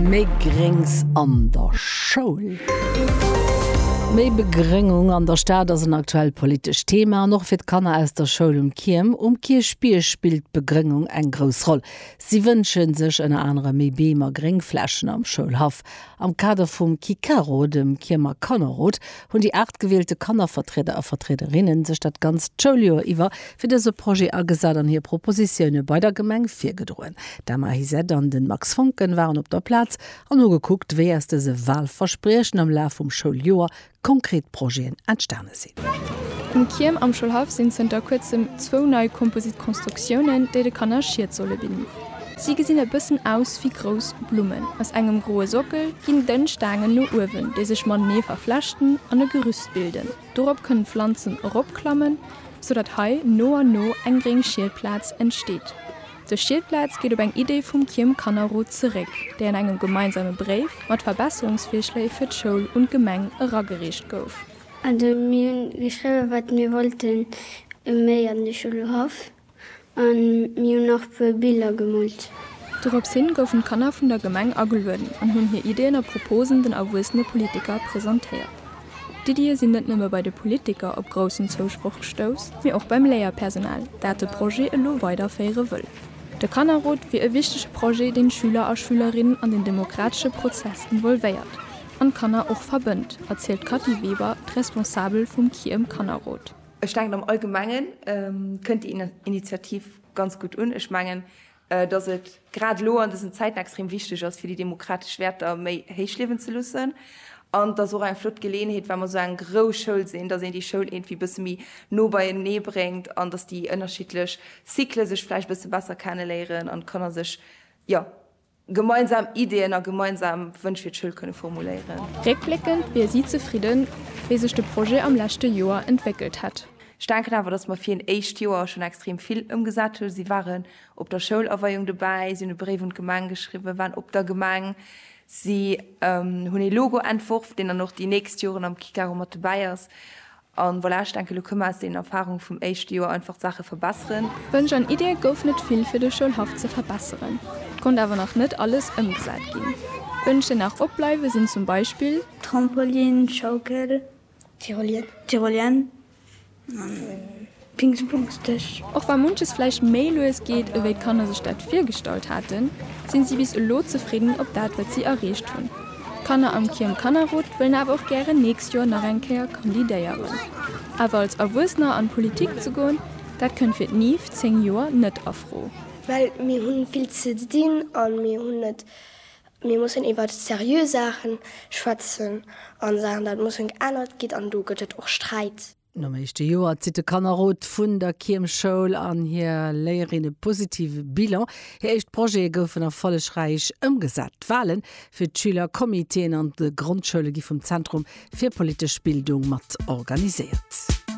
Méi Gréngs an der Schoul. Méi Begrëngung an der Stad ass en aktuellt politescht Thema an och fir d'Kanner aus der Schoul um Kierm. Um Kierchbierg spillt d'Begrëngung eng grouss Roll. Si wënsche sech ënner anerem méi Beem a Gréngflächen am Schoulhaff. Am Kader vum KiKaRo, dem Kiermer Kannerrot, hunn déi 8 gewielte Kannervertrieder a Vertriederinnen sech dat ganzt Schouljoer iwwer fir dëse Projet agesat an hir Propositioune bei der Gemeng virgedroen. D'Emma Hysette an de Max Voncken waren op der Plaz an hu gekuckt, wéi aus dëse Walverspriechen am Laf vum Schouljoer konkret Projeten entstane sinn. Um Kierm am Schoulhaff sinn zënter kuerzem zwou nei Composite-Constructiounen, déi de Kanner Schied solle bidden. Si gesinn e bëssen aus wéi grouss Blummen. Aus engem groe Sockel ginn dënn Staangen no uewen, déi sech matenee verflechten an e Gerüst bilden. Dorop kënnen d'Pflanzen eropklammen, sou datt hei no an no eng gréng Schieldplaz entsteet. Dës Schieldplaz geet op eng Idee vum Kiermkannerrot zeréck, déi an engem gemeinsame Bréif mat Verbesserungsvirschléi fir d'Schoul un d'Gemeng eragereecht gouf. Also mir hunn geschriwwen, wat mir wollten méi an de Schulhaff. A mir hunn nach e puer Biller gemoolt. Dorops hin goufen d'Kanner vun der Gemeng agelueden an hunn hir Iddien a Proposen den erwuessene Politiker presentéiert. D'Iddië sinn net nëmme bei de Politiker op groussen Zousproch gestouss, mee och beim Léierpersonal, dat de Projet elo weiderféiere wëll. De Kannerrot wier e wichtege Projet, deen d'Schüler a Schülerinnen an den demokratesche Prozess involvéiert an d'Kanner och verbënnt, erzielt d'Kathy Weber, d'Responsabel vum Kiëm Kannerrot. Ech denken am Allgemengen kënnt déi Initiativ ganz gutt un. Ech mengen, datt et grad elo an dësen Zäiten extrem wichteg ass, fir déi demokratesch Wäerter méi héich liewen ze loossen. An et ass och eng flott Geleeënheet, well mer esou eng grouss Schoul sinn, datt een déi Schoul iergendwéi e bësse méi no beienee bréngt an datt déi ënnerschiddlech Cycle sech vläicht e bësse besser kenne léieren an d'Kanner sech, jo, Gemeinsam Ideeën a gemeinsam Wënsch fir d'Schoul kënne formuléieren. Réckbléckend wier si zefridden, wéi sech de Projet am leschte Joer entwéckelt hätt. Ech denken awer, datt mer fir een éischt Joer schonn extrem vill ëmgesat hunn. Si waren op der Schoulaweiung dobäi, si hunn e Bréif un d'Gemeng geschriwwen, waren op der Gemeng, si hunn ee Logo entworf, deen dann och déi nächst Joren am Kikero mat dobäi ass. An voilà, ech denken, elo kënne mer aus deenen Erfahrungen vum éischte Joer einfach d'Saache verbesseren. Wënsch an Iddie gouf net vill fir de Schoulhaff ze verbesseren. Et konnt awer nach net alles ëmgesat ginn. Wënsch déi nach opbleiwe sinn zum Beispill. Trampolin, Schaukel, Tyrolienne. Pingspongsdësch. Och wa munches vläicht méi lues geet, ewéi d'Kanner sech dat virgestallt haten, sinn si bis elo zefridden op dat, wat si erreecht hunn. D'Kanner am Kierm Kannerrot wëllen awer och gären nächst Joer nach eng Kéier kandidéieren. Awer als Erwuessener an d'Politik ze goen, dat kënnt fir d'Niv 10 Joer net a Fro. Well mir hu vill ze dinn a mir hunn net, mir mussen iwwer seriö Saache schwätzen a Saachen dat mussen geännert ginn an do gëtt et och Sträit. Nom éischte Joer zitt de Kannerrot vun der Kiermschoul an hir Léierin e positive Bilan. Hir éischt Projete goufen erfollegräich ëmgesat. D'Wale fir d'Schülercomitéen an de Grondschoule gi vum Zentrum fir politesch Bildung mat organiséiert.